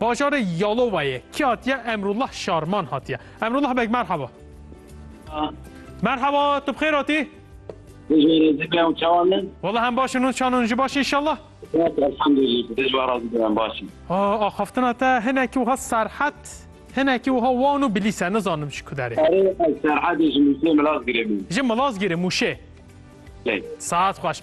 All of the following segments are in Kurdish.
Bajarê Yalowayê kî hatiye? Emrullah Şarman hatiye. Emrullah Beg merhaba. Merhaba, tu bi xêr hatî? Valla hem baş in û çan in ji baş inşallah. Axaftina te hinekî wiha serhet hinekî wiha wan û bilîs e nizanim ji ku derê. Ji Milazgirê Mûşê. Saet xweş.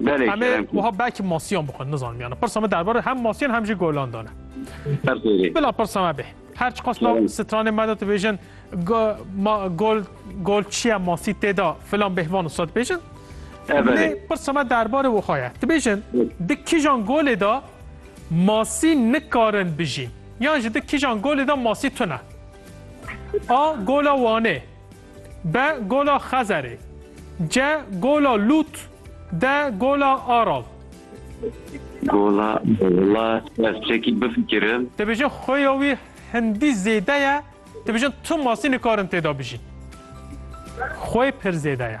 Belê Em ê kerem kir. wiha belkî masiyan bixwin nizanim yani pirsa me derbarê hem masiyan hem jî golan dane. Her xêrê. Bila pirsa me bê. Her çiqas nav Kerem. stranê me de dibêjin go- ma- gol gol çiye masî tê de filan bêhvan wisa dibêjin. Lê Evelê. pirsa me derbarê wiha ye. Dibêjin di kîjan golê de masî nikarin bijîn. Yan jî di kîjan golê de masî tune. A gola Wanê. B. Gola Xezerê C. Gola Lût D. Gola Aral Gola Wala ez çekî bifikirim. Dibêjin xuya wî hindî zêde ye, dibêjin tu masî nikarin têda bijîn. Xwe pir zêde ye.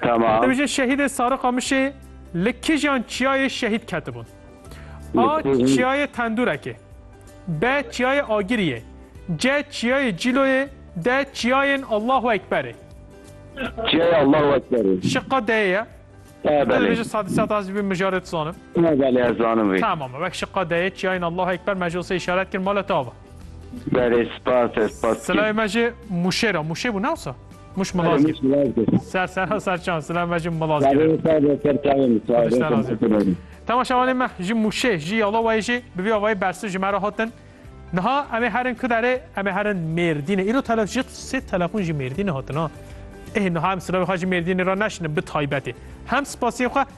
Tamam. Dewjê şehîdê Sari Qamişê li kijan çiyayê şehîd ketibûn. A çiyayê Tendurekê. B çiyayê Agiriyê. C çiyayê Cîloyê. D çiyayên Allahu Ekberê. Çiyayê Allahu Ekberê. Şiqa D'yê ye. Ev belê. Dibêje sadî sat ez bî mijarê dizanim. Ev belê ez zanim vê. Tamam e. Wek şiqa D'yê çiyayên Allahu Ekber me ji ose îşaret kir mala te ava. Berê spas e spas kî. Silayê me jî mûşê ra mûşê bû ne wisa? Mûş milazgîr. Ser sera ser çan silayê me jî milazgîr. Berê spas e ser çayê min spas. Temaşevanê me ji mûşê ji yalowayê jî bi vî avayî bersiv ji me re hatin. Niha em ê herin ku derê em ê herin Mêrdînê. Îro tele ji sê telefon ji Mêrdînê hatin ha. Ê niha em silavê xwe ji Mêrdînê re neşine bi taybetê. Hem spasiyê xwe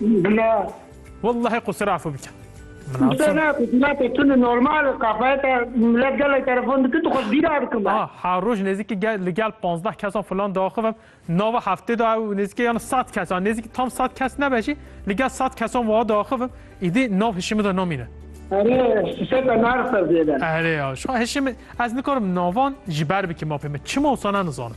Bila. Wellahê ku sirafê bike. Minate tune normal kafayeta millet gelek telefon dike tu xwe bîra dikim. Ha roj nêzîkî gel li gel panzdeh kesan filan diaxivim nava heftê de ew nêzîkî yan sed kesan nêzîkî tam sed kes nebe jî li gel sed kesan wa diaxivim îdî nav hişî min de namîne. Erê seta nersa zêde. Erê ya şu hişî min ez nikarim navan ji ber bikim mapê min çima wisa ne nizanim.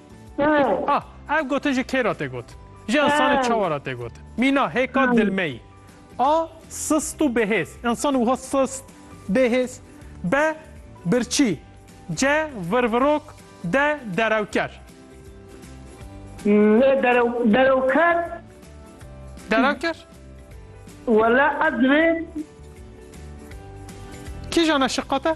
Ê. Ah, ev gotin ji kê re tê gotin? Ji insanê çawa re tê gotin? Mîna, hêka dilmeyî. A, sist û bêhêz, insan wiha sist, bêhêz. B, birçî. C, virvirok. D, derewker. Lê derew, derewker. Derewker? Wele ez divê. Kîjan e şiqate?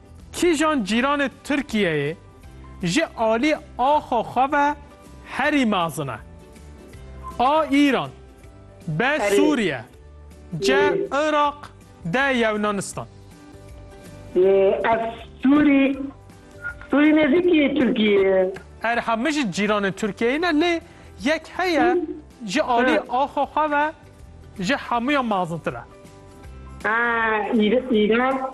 Kîjan cîranê Tirkiyeyê ji alî axa xwe ve herî mezin e? A Îran, B Sûriye, C Iraq, D Yewnanistan. Ev Sûrî, Sûrî nêzîkî yê Tirkiyeyê ye. Erê ha min jî cîranê Tirkiyeyê ne lê yek heye ji alî axa xwe ve ji hemûyan mezintir e. A Îran.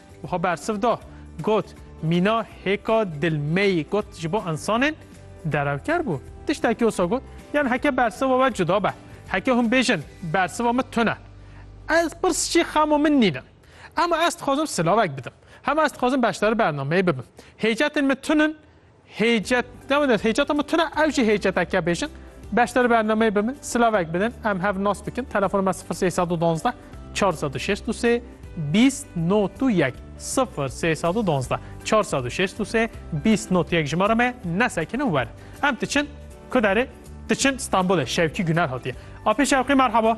Wiha bersiv da, got, Mîna hêka dil me yî got ji bo însanên derewker bû. Tiştekî wisa got, Yan heke bersiva we cuda be, heke hûn bêjin bersiva min tune, ez pirs jî xema min nîne. Ema ez dixwazim silavek bidim. Hema ez dixwazim beşdarî bernameyê bibim. Hêcetên min tune in, Hêcet ne wina hêceta min tune ew jî hêceteke bêjin. Beşdarî bernameyê bi min silavek bidin em hev nas bikin. Telefona me sifir sey sed û duwazdeh çar sed û şêst û sê bîst not û yek sifir sey sed û duwazdeh çar sed û şêst û sê bîst not yek jimara me nesekinin werin. Em diçin ku derê diçin Stenbolê Şewkî Guner hatiye. Apê Şewqî merhaba.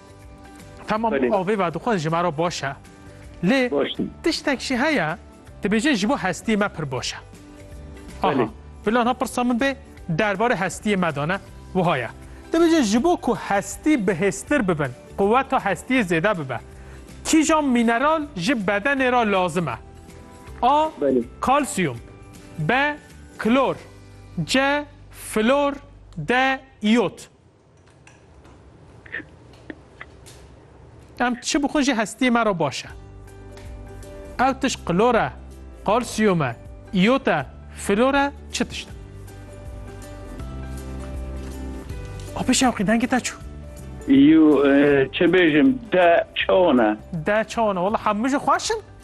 Tamam Belê. avê ve dixwin ji me re baş e. Lê Baş in. tiştek jî heye dibêjin ji bo hestiyê me pir baş e. Aha, Belê. bila niha pirsa min bê derbarê hestiyê me de ne wiha ye. Dibêjin ji bo ku hestî bihêztir bibin, quweta hestiyê zêde bibe. Kîjan mîneral ji bedenê re lazim e? A. Belê. Kalsiyum B. Klor C. Flor D. İyot Em çi bixwin jî hestiyê me re baş e. Ew tişt klor e, kalsiyum e, iyot e, flor e, çi tişt e? Apê şewqî dengê te çû. Yû e, çi bêjim de çawan e. De çawan e. Wala hemû jî xweş in.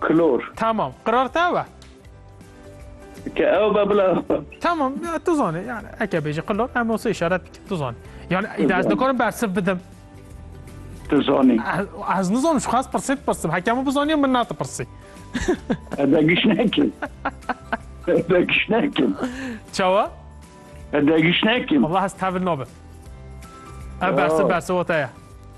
Klor. Tamam. Qirar te ew e? Ke ew be bila ew be. Tamam tu zanî yani eke bêjî qilo em olsa işaret bikin tu zanî. Yani îda ez nikarim bersiv bidim. Tu zanî. Ez nizanim şu xas pirsê pirsim. Hekemû bizaniye min nate pirsî. Ede giş nekin. Ede giş nekin. Çawa? Ede giş nekin. Allah ez tevil nabim. Ev bersiv bersiv o te ye.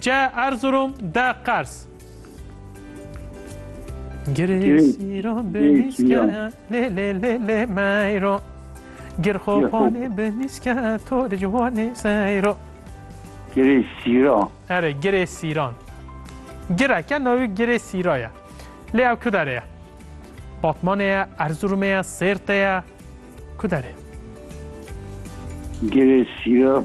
Ce Erzurum de qers. Girê sîro binîske lê lê lê lê meyro. Gir xo panê binîske to li ciwanê seyro. Girê sîra. Erê girê sîran. Gireke navî girê sîra ye. Lê ew ku derê ye? Batmanê ye, Erzurumê ye, Sêrtê ye. Ku derê? Girê sîra